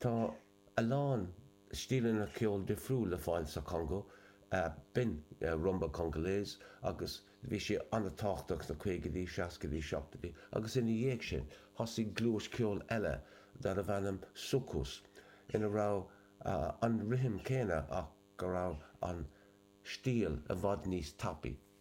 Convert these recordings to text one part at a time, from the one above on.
Tá a lán stíleanna ceoil difriúil le fáil sa Chongó, b'in rumba Congolaise agus bhí sí an-tábhachtach sna caogaidí, seascaidí, seachtaidí agus ina dhiaidh sin thosaigh gluais ceoil eile darbh ainm soukous ina raibh an rithim céanna ach go raibh an stíl i bhfad níos tapaidh.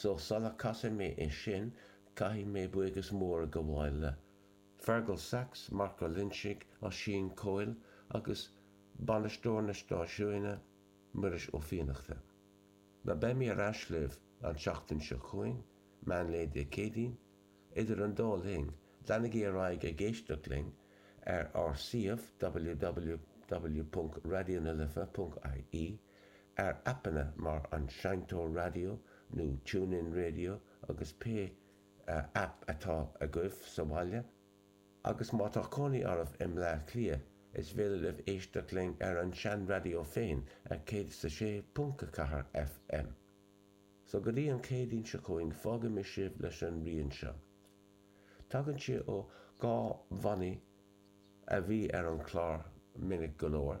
So, sula casfaidh mé é sin, caithfidh mé buíochas mór a ghabháil le Fearghal Saxe, Mark Ó Loinsigh, Oisín Coyle agus bainisteoir na stáisiúine, Muiris Ó Fiannachta. Now, beidh mé ar ais libh an tseachtain seo chugainn, meán lae Dé Céadaoin. Idir an dá linn, leanaigí ar aghaidh ag éisteacht linn ar ár suíomh www.raidionalife.ie ar aipeanna mar An Seinnteoir Raidió nó TuneIn Radio agus pé aip atá agaibh sa bhaile, agus má tá cónaí oraibh i mBleá Cliath, is féidir libh éisteacht linn ar an seanraidió féin ar 106.4 FM. So go dtí an Chéadaoin seo chugainn fágfaidh mé sibh leis an rian seo. Tagann sé ó dhá bhannaí a bhí ar an chlár minic go leor.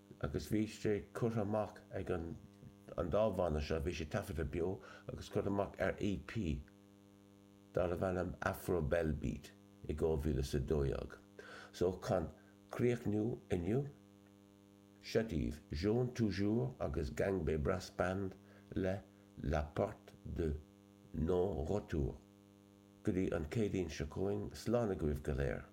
agus bhí sé curtha amach ag an an dá bhanna seo, bhí sé taifeadta beo agus curtha amach ar EP darbh ainm Afrobelbeat i 2012. So chun críochnú inniu, seo daoibh Jaune Toujours agus Gangbé Brass Band le La Porte de Non Retour. Go dtí an Chéadaoin seo chugainn, slán agaibh go léir!